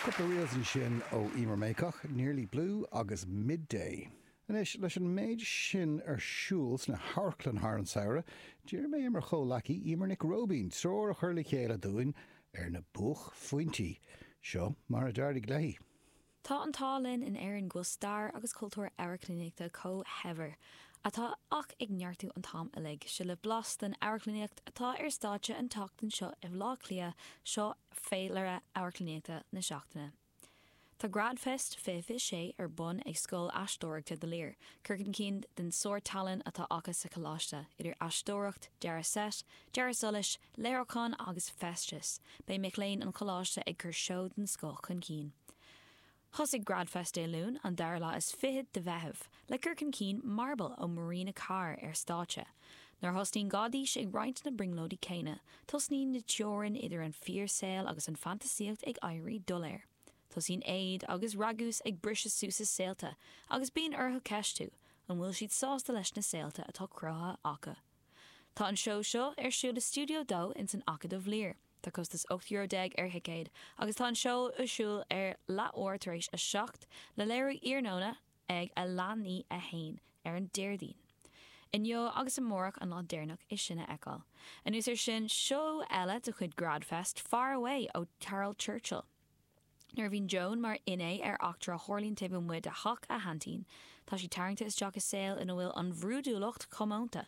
Cúpla reels ansin ó Emer Mayock, Nearly Blue agus Midday. Anois, leis an méid sin ar siúl sna hamharclann thar an samhradh, d'iarr mé ar mo chomhleacaí Emer Nic Róibín treoir a chur le chéile dúinn ar na buaicphointí. Seo mar a d'éirigh léi. Tá an t-ádh linn in Éirinn go bhfuil stair agus cultúr amharclannaíochta chomh saibhir atá ach ag neartú an t-am uilig. Seo libh blas den amharclannaíocht atá ar stáitse an tseachtain seo i mBleá Cliath, seo féilire amharclannaíochta na seachtaine. Tá Gradfest 2026 ar bun ag Scoil Aisteoireachta The Lir, cur chun cinn den sárthallann atá acu sa choláiste, idir aisteoireacht, dearadh seit, dearadh solais, léiriúchán agus feisteas, beidh mic léinn an Choláiste ag cur seó den scoth chun cinn. Thosaigh GradFest Dé Luain, an dara lá is fichead de Mheitheamh, le cur chun cinn Marble ó Marina Carr ar stáitse. Nuair a thosnaíonn Gáidís ag roinnt na brionglóidí céanna, tosnaíonn na teorainn idir an fíorshaol agus an fantasaíocht ag éirí doiléir. Tosaíonn éad agus ragús ag briseadh suas a saolta agus bíonn orthu ceistiú, an bhfuil siad sásta leis na saolta atá cruthaithe acu? Tá an seó seo ar siúl i Studio 2 ins an Acadamh Lir. Tá costas 18 euro ar thicéad agus tá an seó ar siúl ar leathuair tar éis a seacht, le léiriú iarnóna ag a leath i ndiaidh a haon ar an Déardaoin. Inniu agus amárach an lá deireanach é sin a fheiceáil. Anuas ar sin, seó eile de chuid Grad Fest, Far Away ó Caryl Churchill. Nuair a bhíonn Joan mar fhinné ar eachtra a tharlaíonn taobh amuigh de theach a haintín, tá sí tarraingte isteach i saol ina bhfuil an bhrúidiúlacht comónta.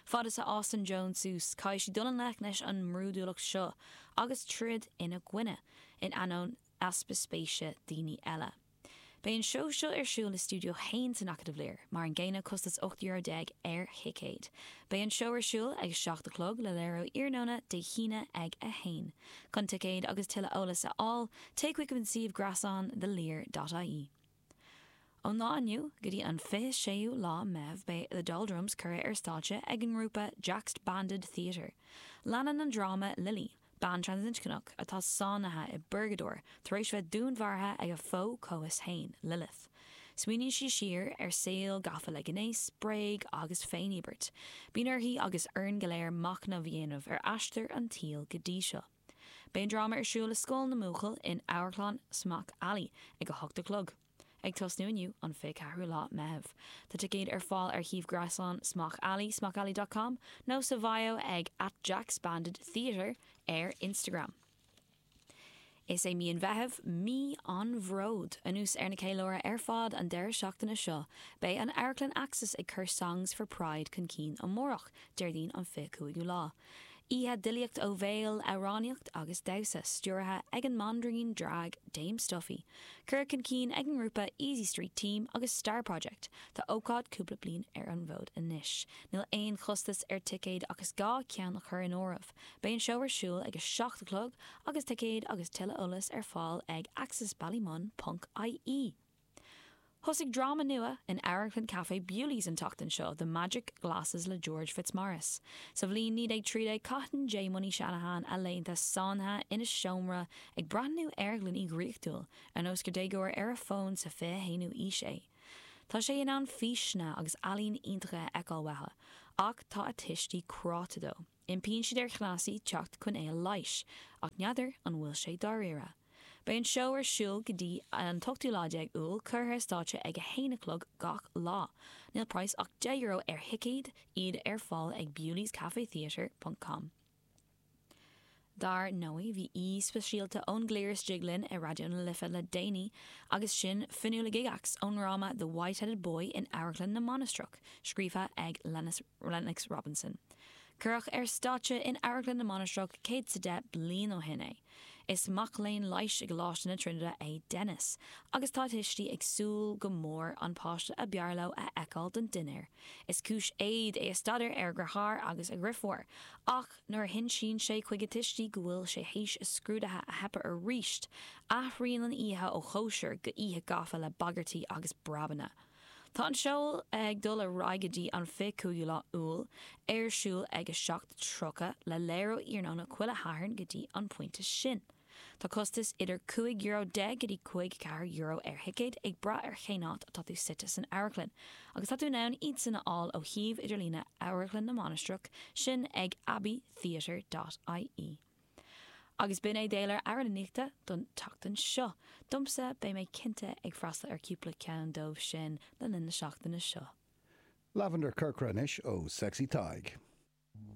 Fad is a fhásann Joan suas, caithfidh sí dul i ngleic leis an mbrúidiúlacht seo agus troid ina coinne, in ainneoin easpa spéise daoine eile. Beidh an seó seo ar siúl i Studio 1 san Acadamh Lir, mar an gcéanna, costas 18 euro ar thicéad. Beidh an seó ar siúl ag a seacht a chlog, le léiriú iarnóna Dé hAoine ag a haon. Chun ticéid agus tuilleadh eolas a fháil, téigh chuig an suíomh greasáin thelir.ie. Ón lá inniu go dtí an 26ú lá Meitheamh beidh The Doldrums curtha ar stáitse ag an ngrúpa Jaxbanded Theatre. Leanann an dráma Lili, Bean transinscneach atá sáinnithe i bpurgadóir tar éis bheith dúnmharaithe ag a fo-chomhfhios féin, Lilith. Smaoiníonn sí siar ar saol gafa le gnéas, bréige agus féiníobairt. Bíonn uirthi agus orainn go léir machnamh a dhéanamh ar aistear an tsaoil go dtí seo. Beidh an dráma ar siúl i Scoil na mBuachaillí in Amharclann Smock Alley ag a hocht a chlog. Ag tosnú inniu, an 24ú lá Meitheamh. Tá ticéid ar fáil ar shuíomh gréasáin Smock Alley, smockalley.com, nó sa bhio ag at jaxbanded theatre ar Instagram. Is é mí an Mheithimh mí an bhróid. Anuas ar na ceiliúrtha ar fad an deireadh seachtaine seo, beidh an amharclann Axis ag cur Songs for Pride chun cinn amárach, Déardaoin an 25ú lá. Oíche d'fhilíocht ó bhéal, amhránaíocht agus damhsa, stiúraithe ag an mbanríon drag Dame Stuffy. Curtha chun cinn ag an ngrúpa Easy Street Team agus Star Project, tá ócáid cúpla bliain ar an bhfód anois. Níl aon chostas ar ticéad ach is gá ceann a chur in áireamh. Beidh an seó ar siúl ag a seacht a chlog agus ticéid agus tuilleadh eolais ar fáil ag axisballymun.ie. Thosaigh dráma nua in amharclann Café Bewley's an tseachtain seo, The Magic Glasses le George Fitzmaurice. Sa bhliain 1913 caitheann Jaymony Shanahan a laethanta sáinnithe ina seomra ag breathnú ar ghloiní dhraíochtúil, ar nós gur déagóir ar a fón sa 21ú aois é. Tá sé in ann físeanna agus ealaín iontacha a fheiceáil uathu, ach tá a tuistí cráite dó. Impíonn siad ar chneasaí teacht chun é a leighis, ach n'fheadar an bhfuil sé dáiríre. Beidh an seó ar siúl go dtí an t-ochtú lá déag Iúil, curtha ar stáitse ag a haon a chlog gach lá. Níl praghas ach deich euro ar thicéad, iad ar fáil ag bewleyscafetheatre.com. Dar ndóigh, bhí aoi speisialta ón gcliar istigh linn i Raidió na Life le déanaí agus sin Fionnuala Gygax ón ndráma The Whiteheaded Boy in Amharclann na Mainistreach, scríofa ag Lennox Robinson. Cuireadh ar stáitse in Amharclann na Mainistreach 110 bliain ó shin é. Is mac léinn leighis i gColáiste na Trinide é Denis agus tá a thuistí ag súil go mór an páiste a b'fhearr leo a fheiceáil don dinnéar. Is cúis éad é a staidéar ar a dheartháir agus a dhriofúr ach, Nuair a hinsíonn sé chuig a tuistí go bhfuil sé théis a scrúdaithe a theipeadh aríst, athraíonn an oíche ó chóisir go oíche gafa le bagairtí agus breabanna. Tá an seó ag dul ar aghaidh go dtí an 25ú lá Iúil, ar siúl ag 7:30, le léiriú iarnóna chuile Shathairn go dtí an pointe sin. Tá costas idir €15 go dtí €54 ar thicéad, ag brath ar cén áit atá tú suite san amharclann, agus tá tú in ann iadsan a fháil ó shuíomh idirlíne Amharclann na Mainistreach sin ag abbeytheatre.ie. Agus b'in é d'fhéilire amharclannaíochta don tseachtain seo. Domsa, beidh mé cinnte ag freastal ar cúpla ceann dóibh sin le linn na seachtaine seo. Lavender Corcra anois ó Sexy Tadhg.